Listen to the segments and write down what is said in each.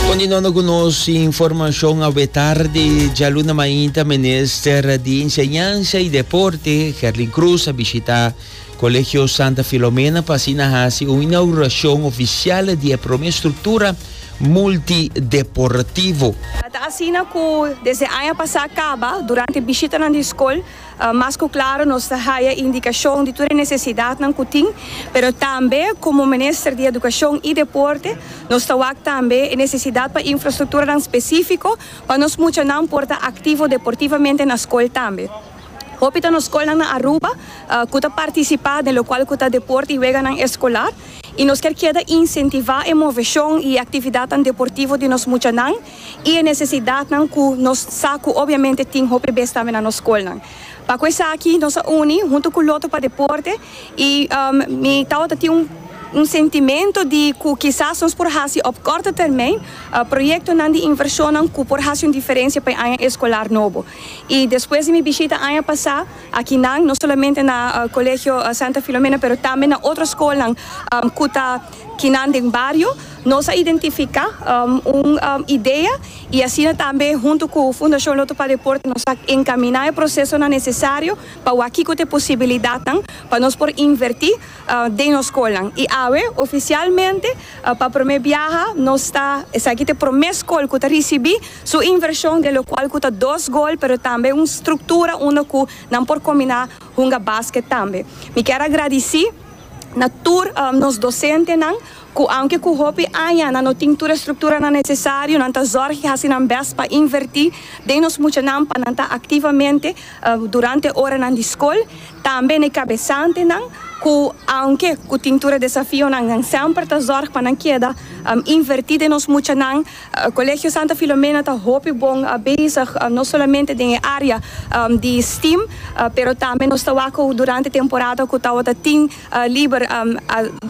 Continuando cu nos informacion awe tarde, djaluna mainta minister di Enseñansa y Deporte, Gerlin Croes, a bishita Colegio Santa Filomena pa asina haci un inauguracion oficial di e prome structura multideportivo. Ta asina cu desde aña pasa caba, durante bishitanan di scol, Mas ku klaro nos ta haya indikashon di tur e nesesidatnan ku tin, pero tambe komo Minister di Edukashon i Deporte nos ta wak tambe e nesesidat pa infrastrukturanan spesifiko pa nos muchanan por ta aktivo deportivamente na skol tambe. Hopi ta nos skolnan na Aruba ku ta partisipá den lokual ku ta deporte i weganan eskolar i nos kier keda insentivá e moveshon i e aktividatnan deportivo di nos muchanan. i e nesesidatnan ku nos sa ku obiamente tin hopi bes tambe na nos skolnan. Pa ku esaki nos a uni huntu ku Lotto pa deporte i mi tabata tin un un sentimento di ku kisas nos por hasi op korto termijn proyektonan di invershonnan ku por hasi un diferensia pa e aña eskolar nobo. I despues di mi bishita aña pasá akinan, no solamente na Kolegio Santa Filomena pero tambe na otro skolnan ku ta. Kinan den bario nos a identifica un idea y asina tambe hunto cu Fundacion Lotto pa Deporte nos a encamina e procesonan necesario pa wak kico ta e posibilidadnan pa nos por inverti den nos scolnan. Y awe oficialmente pa prome biaha nos ta, esaki ta e prome scol cu ta ricibi su inversion den locual cu ta dos gol pero tambe un structura unda cu nan por combina hunga basket tambe. Mi kier a gradici. na tur nos dosentenan ku aunke ku hopi aña nan no tin tur e strukturanan nesesario, nan ta zòrg i hasi nan bèst pa invertí den nos muchanan pa nan ta aktivamente durante oranan di skol. Tambe na e kabesantenan ku aunke ku tin tur e desafionan nan semper ta zòrg pa nan keda invertí den nos muchanan. Colegio Santa Filomena ta hopi bon bezig no solamente den e area di steam pero tambe nos ta wak cu durante temporada cu tawata tin liber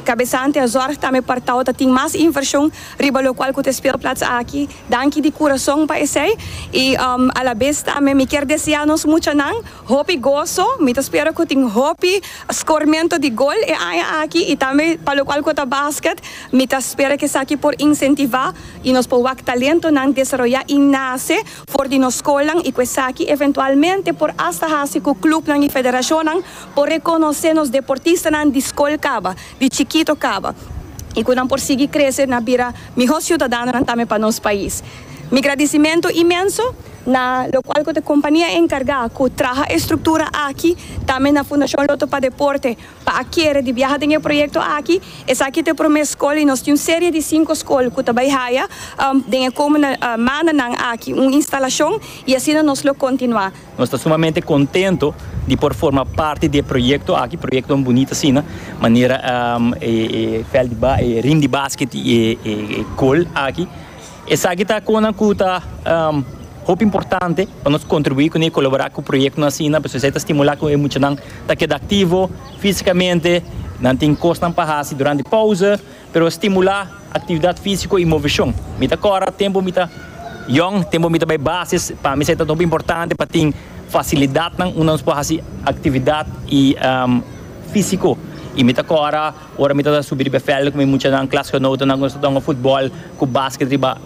cabesante a zorg tambe pa tawata tin mas inversion riba locual cu ta e speelplaats aki. Danki di curason pa esey y alabes tambe mi kier desea nos muchanan. Hopi goso, mi ta spera cu tin hopi scormento di gol e aña aki y tambe pa locual cu ta basket, mi ta spera cu esaki por incentiva y nos por wak talentonan desaroya y nace for di nos scolnan y cu esaki eventualmente por hasta haci cu clubnan y federacionnan por reconoce nos deportistanan di scol caba, di chikito caba y cu nan por sigui crece na bira miho ciudadanonan tambe pa nos pais. Mi gradisimentu imenso na lo cual cu ta compania encarga cu traha e structura aki, tambe na Fundacion Lotto pa Deporte pa a kere di biaha den e proyecto aki. Esaki ta e prome scol y nos tin un serie di cinco scol cu ta bay haya den e comende mandanan aki un instalacion y asina nos lo continua. Nos ta sumamente contento di por forma parti di e proyecto aki, proyectonan bunita asina manera e veld di riem di basket y e goal aki. Esaki ta konan ku ta hopi importante pa nos kontribuí kuné, kolaborá ku proyektonan asina pasobra esei ta stimulá ku e muchanan ta keda aktivo físikamente, nan tin kosnan pa hasi durante pause, pero stimulá aktividat físiko i moveshon. Mi ta kòrda tempu mi ta yòn, tempu mi ta bai basis, pa mi esei ta hopi importante pa tin fasilidatnan unda nos por hasi aktividat i físiko. I mi ta kòrda. Ora mi tabata subi riba e vèlden ku mi muchanan, klasgenotennan, nos ta tonga futbòl ku basket riba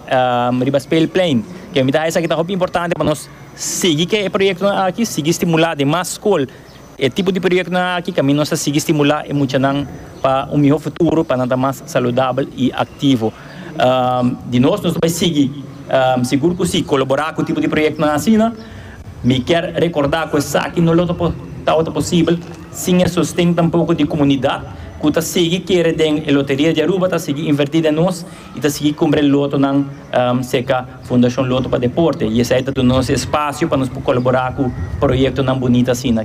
riba speelplein. Ke mi ta haya esaki ta hopi importante pa nos sigui ke e proyektonan aki, sigui stimulá den mas skol e tipo di proyektonan aki, kaminda nos ta sigui stimulá e muchanan pa un mihó futuro, pa nan ta mas saludabel i aktivo. Di nos, nos ta bai sigui, sigur ku sí, kolaborá ku e tipo di proyektonan asina. Mi kier recordá cu esaki no lo tabata posibel sin e sosten tampoco di comunidad cu ta sigui kere den e Loteria di Aruba, ta sigui inverti den nos y ta sigui cumpra e lotonan cerca Fundacion Loto pa Deporte y esai ta duna nos e espacio pa nos por colabora cu proyectonan bunita asina.